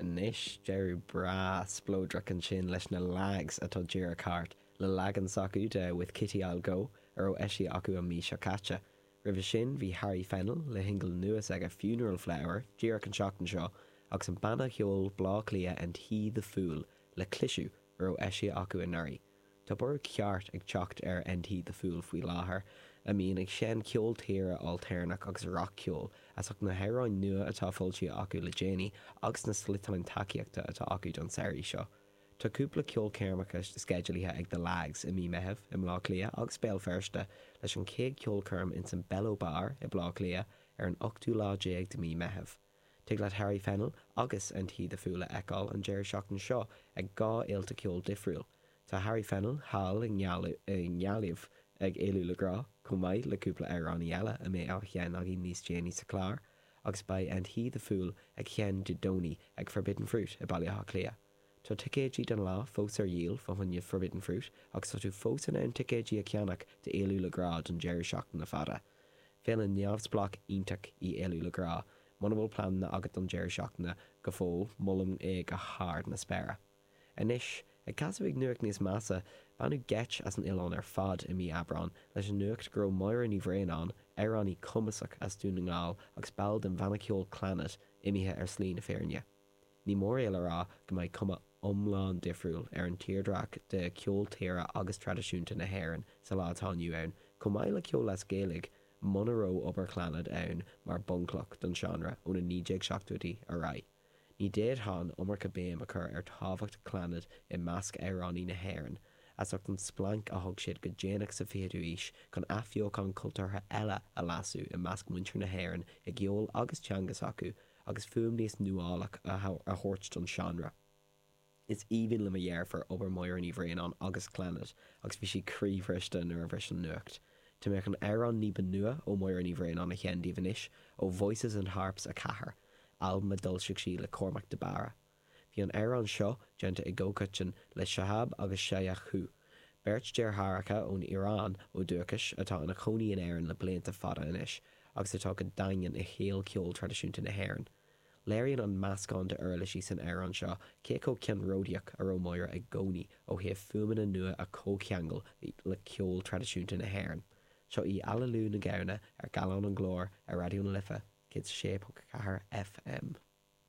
Anois deireadh breá spleodrach ansin leis na Lags atá díreach thart, le leagan s'acu de With Kitty I'll Go a raibh eisithe acu an mhí seo caite. Roimhe sin bhí Harry Fennell le shingil nua s'aige Funeral Flower díreach an seachtain seo agus an banna cheoil Bleá Cliath And He The Fool le cliseadh a raibh eisithe acu anuraidh. Tá borradh ceart ag teacht ar And He The Fool faoi láthair, a mbíonn ag seinn ceol tíre ailtéarnach agus rac-cheol, as ucht na hamhráin nua atá foilsithe acu le déanaí agus na sliotáin tacaíochta atá acu don samhraidh seo. Tá cúpla ceolchoirmeacha sceidealaithe ag The Lags i mí Meitheamh i mBleá Cliath agus Béal Feirste, leis an chéad cheolchoirm insan Bello Bar i Bleá Cliath ar an ochtú lá déag de mí Meitheamh. Tig leat Harry Fennell agus and He the Fool a fheiceáil an deireadh seachtaine seo ag dhá fhéilte ceoil difriúil. Tá Harry Fennell thall i nGaillimh ag Éalú le Grá, chomh maith le cúpla amhránaí eile a mbeidh á sheinn againn níos déanaí sa chlár, agus beidh and He the Fool ag sheinn Dé Domhnaigh ag Forbidden Fruit i Baile Átha Cliath. Tá ticéidí don lá fós ar dhíol fá choinne Forbidden Fruit agus tá tú fós in ann ticéidí a cheannach d'Éalú le Grá don deireadh seachtaine fada. Féile neamhspleách iontach í Éalú le Grá. Muna bhfuil pleananna agat don deireadh seachtaine go fóill, molaim é go hard na spéire. Anois, ag casadh ag nuacht níos measa, baineadh geit as an oileán ar fad i mí Aibreán leis an nuacht go raibh Máire Ní Bhraonáin, amhránaí cumasach as Dún na nGall agus ball den bhanna ceoil Clannad, imithe ar shlí na fírinne. Ní mór é le rá go mbeidh cuma iomlán difriúil ar an tírdreach de cheol tíre agus traidisiúnta na hÉireann sa lá atá inniu ann, chomh maith le ceol as Gaeilge, muna raibh obair Chlannad ann mar bhunchloch don seánra ó na 1970idí ar aghaidh. Ní d'fhéadfá an iomarca béim a chur ar tábhacht Chlannad i measc amhránaí na hÉireann, as ucht an splanc a thug siad go déanach sa 20ú aois chun athbheochán cultúrtha eile a lasadh i measc muintir na hÉireann i gceol agus teanga s'acu, agus fuaim níos nuálach a thabhairt don seánra. Is aoibhinn le mo dheirfiúr obair Mháire Ní Bhraonáin agus Clannad agus bhí sí croíbhriste nuair a bhris an nuacht. Tá mé chun amhrán ní ba nua ó Mháire Ní Bhraonáin a sheinn daoibh anois, ó Voices and Harps 4, albam a d'fhoilsigh sí le Cormac de Barra. Bhí an amhrán seo déanta i gcomhcoiteann le Shahab agus Shayan Coohe, beirt deartháireacha ón Iaráin ó dhúchais atá ina chónaí in Éirinn le blianta fada anois agus atá go daingean i shaol cheol traidisiúnta na hÉireann. Léiríonn an meascán d'uirlisí san amhrán seo cé chomh ceannródaíoch a raibh Máire i gcónaí ó thaobh fuaimeanna nua a chomhcheangal le ceol traidisiúnta na hÉireann. Seo í Aililiú na Gamhna ar Gallán an Ghlóir ar Raidió na Life 106.4 FM.